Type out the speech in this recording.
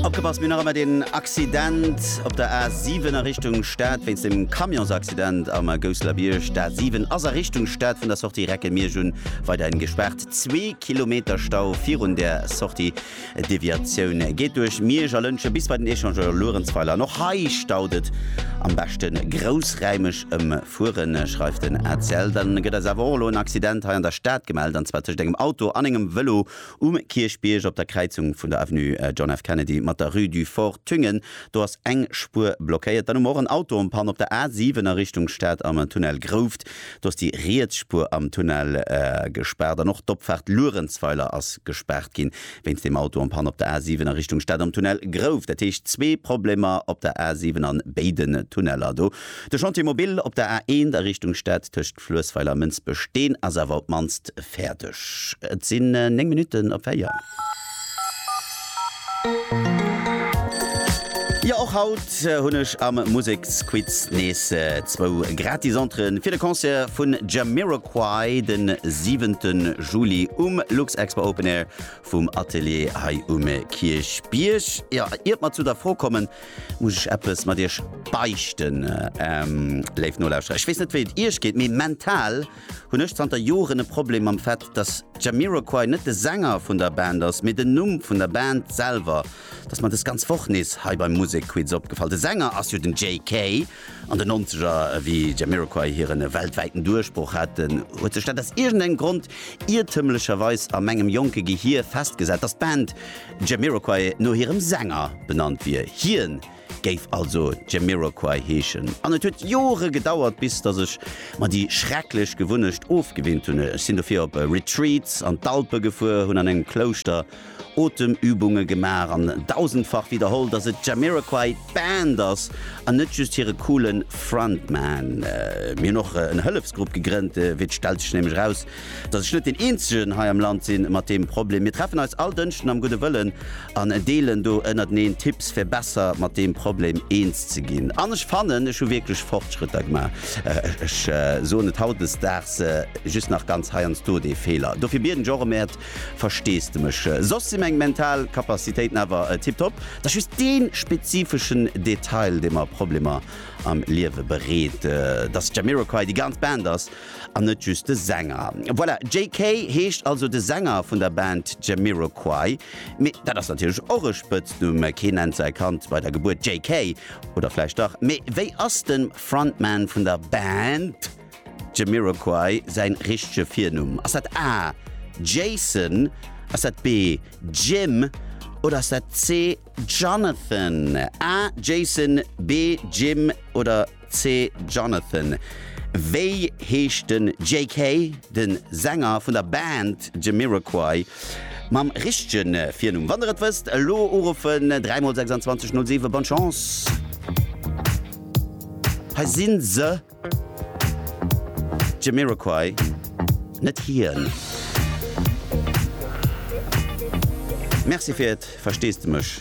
Opgepasst, mir hunn nach ëmmer deen Accident op der A 7 a Richtung Stad wéinst dem Camionsaccident am Gousselerbierg. D'A 7 ass a Richtung Stad vun der Sortie Recke-Miersch un weiderhin gespaart. Zwee Kilometer Stau virun där Sortie. D'Deviatioun geet duerch Miersch a Lëntgen bis bei den Echangeur Luerenzweiler. An och hei staut et. Am beschte groussräimeg ëmfueren, schreift den ACL. Dann gëtt eis awer och elo en Accident hei an der Stad gemellt, an zwar tëscht engem Auto an engem Vëlo Um Kierchbierg, op der Kräizung vun der Avenue John F. Kennedy mat der Rue du Fort Thüngen, do ass eng Spuer blockéiert. Dann hu mer och en Auto en Panne op der A7 a Richtung Stad am Tunnel Grouft. Do ass déi riets Spuer am Tunnel gespaart an och d'Opfaart Luerenzweiler ass gespaart ginn, wéinst deem Auto en Panne op der A7 a Richtung Stad am Tunnel Grouft. Dat heescht zwee Problemer op der A7 an béiden Tunneler do. De Chantier Mobil op der A1 a Richtung Stad tëscht. Fluessweiler Mënsbech, deen ass awer op d'mannst fäerdeg. Et sinn 9 Minutten op 4. Jo, och haut hunn ech am Museksquiz nees zwou gratis Entréen fir de Concert vun Jamiroquai den 7 Juli um Luxexpo Open Air vum Atelier hei um Kierchbierg. Jo, iert mer zu der Fro kommen, Muss ech eppes mat iech beichten, léif Nolauschterer? Ech weess net, wéi et iech geet, mee mental hunn ech zanter Joren e Problem mam Fait, dass Jamiroquai net de Sänger vun der Band ass, mee den Numm vun der Band selwer. Dat ass mer dës ganz Woch nees hei beim Musekquiz opgefall. De Sänger ass jo den JK. An den Nonzeger, wéi Jamiroquai hiren weltwäiten Duerchbroch haten, huet sech dat aus iergendengem Grond iertëmlecherweis a mengem jonke Gehir festgesat, dass d'Band, Jamiroquai no hirem Sänger benannt wier. Hien géif also Jamiroquai heeschen. An et huet Jore gedauert, bis datt ech mer déi schrecklech Gewunnecht ofgewinnt hunn. Ech sinn dofir op Retreats an d'Alpe gefuer, hunn an engem Klouschter Otemübunge gemaach an dausendfach widderholl, datt et Jamiroquai d'Band ass an net just hire coole Frontman. Mir hunn och en Hëllefsgrupp gegrënnt, wéi et stellt sech nämlech eraus, dass ech net deen eenzegen hei am Land sinn mat deem Problem. Mir treffen eis all Dënschden am gudde Wëllen an deelen do ënnerteneen Tipps fir besser mat deem Problem eens ze ginn. An ech fannen ech hu wierklech Fortschrëtter gemaach. Ech soen et hautdesdaags just nach ganz heiansdo dee Feeler. Dofir bieden ech och em äert Versteesdemech. Soss si meng mental Kapazitéiten awer tiptop. Et ass just dee spezifeschen Detail dee mer Problemer am Liewe bereet, dass d'Jamiroquai déi ganz Band ass An net just de Sänger. Voilà, JK. heescht also de Sänger vun der Band Jamiroquai. Mee dat ass natierlech och e Spëtznumm, kee nennt säi Kand bei der Gebuert JK. Oder vläicht dach? Mee wéi ass dem Frontman vun der Band Jamiroquai säin richtege Virnumm? Ass dat A. Jason? Ass dat B. Jim? Oder ass dat C. Jonathan, A. Jason, B. Jim oder C. Jonathan? Wéi heescht den JK. den Sänger vun der Band Jamiroquai mam richtegen Virnumm? Wann der et wësst elo uruffen, 3 mol 26 07. Bonne Chance! Hei sinn se! Jamiroquai, net hien. Merci fir et, versteesdemech.